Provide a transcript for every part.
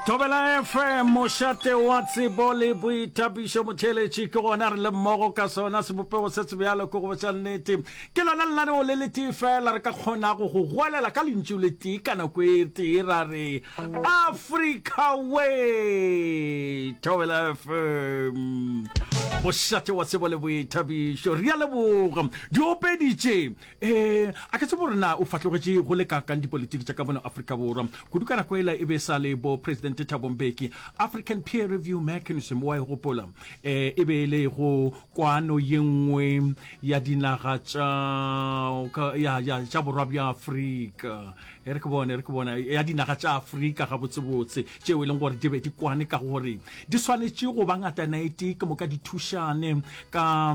Thobela FM mošate wa tsebo le boithabišo motheeletši ke gona re le mmogo ka sona sebopego se se bjalo ke go botša nnete ke lona lenaneo le letee fela re ka kgonago go goelela ka lentšu le tee ka nako e tee ra re africa way thobela fm mošate wa tsebo le boithabišo re a leboga di opeditše Ee, a ke tsebe gore na o fahlogetše go le kaakang dipolitiki tša ka mona Afrika Borwa. Kudu ka nako ela e be e sa le bo Presidente Thabo Mbeki. African Peer Review Mechanism, o a e gopola? Ee, e be e le go kwano ye nngwe ya dinaga tša ka, ya, ya, tša Borwa bja Afrika. E re ke bone, e re ke bone, ya dinaga tša Afrika gabotsebotse, tšeo e leng gore di be di kwane ka gore di swanetše go ba ngatanaetee ke moka di thušane ka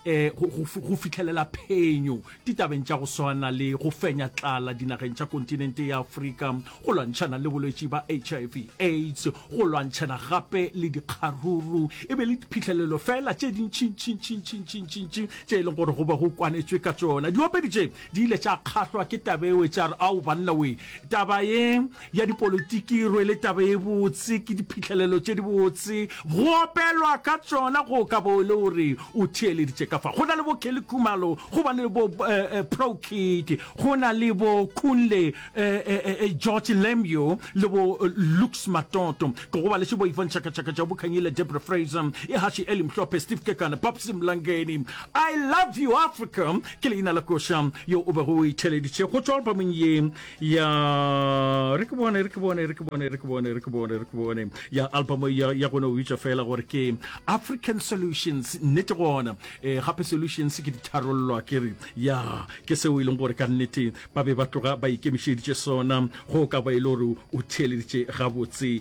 eh, go, go, go fitlhelela phenyo ditabeng tša go swana le go fenya tlala dinageng tša kontinente ya aforika go lwantšhana le bolwetši ba hiv aids go lwantšhana gape le dikgaruru e be le diphitlhelelo fela tše dintšintšintšintšintšintšintšintšintši tše e leng gore go be go kwanetswe ka tsona diopedi tše di ile tša kgahlwa ke tabewe tša re ao banna we taba ye ya dipolitiki e rwele taba e botse ke diphihlelelo tše di botse go opelwa ka tsona go ka bo e le gore o theeleditše ka fa go na le bo kelly khumalo go ba le bo uh, eh, uh, eh, pro kid go na le bo kunle uh, george lemyo le bo lux matoto ke go ba le sebo ivan chakachaka ja bokhanyile debra fraser e hashi eli mhlophe steve kekana babsi mlangeni i love you africa ke leina la koša yo o bego o itheleditše go tswa albamong ye ya re ke bone re ke bone re ke bone re ke bone re ke bone re ke bone ya album ya ya gone o bitša fela gore ke african solutions nnete gona eh gape solutions ke ditharollo ke re ya ke seo e leng gore ka nnete ba be ba tloga ba ikemišeditše sona go ka ba e le gore o theeleditše gabotse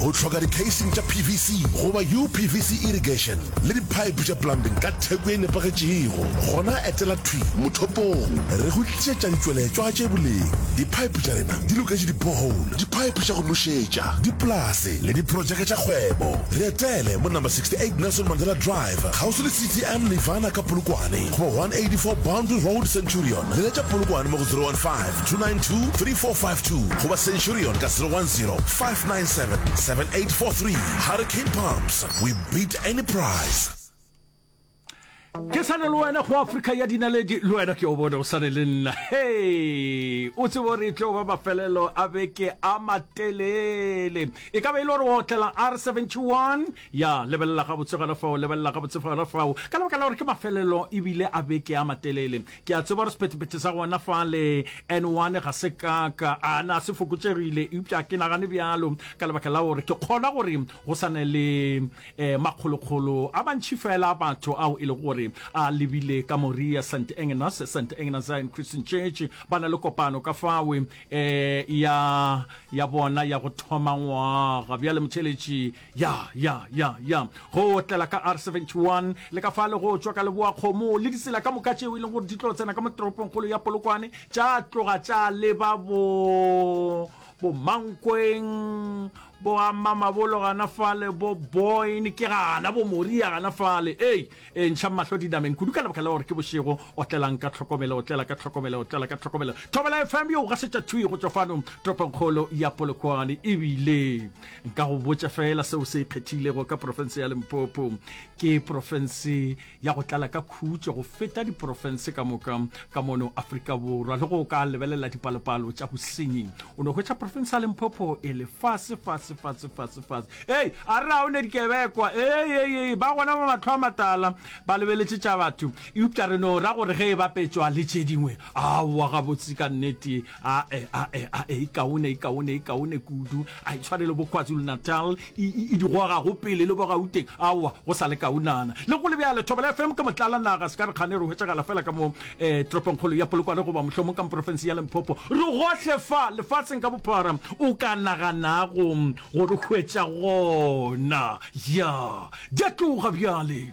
Go hloka dikheising tša PVC goba UPVC irrigation le diphaephe tša plumbing ka theko e nepagetšego, gona etela thwi mothopong re go tlišetša ditšweletšwa tše boleng. Diphaephe tša rena di loketše di-borehole, diphaephe tša go nošetša, dipolase le diprotšeke tša kgwebo. Re etele mo number 68 Nelson Mandela Drive, kgauswi le CTM Nirvana ka Polokwane, goba 184 Boundary Road, Centurion. Leletša Polokwane mo go 015 292 3452 goba centurion ka 010 597 7843 hurricane pumps we beat any price ke sane le wena go afrika ya dinaledi le wena ke o bone o sane le nna he o tsebo gore e tlo ba mafelelo a beke a matelele e ka be e le gore wa otlela r 71 ya lebelela gabotse gona fao lebelela gabotse gona fao ka lebaka la gore ke mafelelo ebile a beke a matelele Ke a tseba gore sephethephethe sa gona fa le N1 ga se kaka a na se fokotšegile, eupša ke nagane bjalo ka lebaka la gore ke kgolwa gore go sa ne le eh, makgolokgolo a bantši fela a batho ao e lego gore a lebile ka Moria St. Agnes, St. Agnes Zion Christian Church, ba na le kopano ka fawe eh, ya, ya bona ya go thoma ngwaga. Bjale motheletši Ya, ya, ya, ya go otlela ka R seventy-one, le ka fale go tšwa ka Leboakgomo, le ditsela ka moka tšeo e leng gore di tlo tsena ka mo toropongkgolo ya Polokwane, tša tloga tša leba bo, bo Mankweng, bo ama mabolo gana fale, bo Boyne, ke gana bo Moria gana fale. Ei, e ntšha mahlo dinameng kudu ka lebaka la gore ke bošego. Otlelang ka tlhokomelo, otlela ka tlhokomelo, otlela ka tlhokomelo. Thobela FM yo o gasetša thwi go tšwa fano toropongkgolo ya Polokwane, e bile Nka go botša fela seo se ikgethilego ka profense ya Limpopo. Ke profense ya go tlala ka khutšo go feta diprofense ka moka ka mono Afrika Borwa. Le go o ka lebelela dipalopalo tša bosenyi, o no hwetša profense ya Limpopo e le fase, fase, fase, fase, fase. Hei, a re ga o ne dikebekwa? Hei, hei, hei, ba gona ba mahlo a matala ba lebeletše tša batho. Eupša re no ra gore ge e bapetšwa le tše dingwe, aowa, gabotse ka nnete, ae ae ae e kaone e kaone e kaone kudu a e tshwane le bokwazulu-natal e, e, e di goga go pele le bogauteng aowa go sa le kaonana le go lebjale thobela fm ke motlala naga se ka re kgane re hwetšagala fela ka mo um eh, toropongkgolo ya polokwane goba mohlomong ka moporofensi ya lemphopo re gohle fa lefaseng ka bophara o ka naganago go re hwetša gona ya di a tloga bjale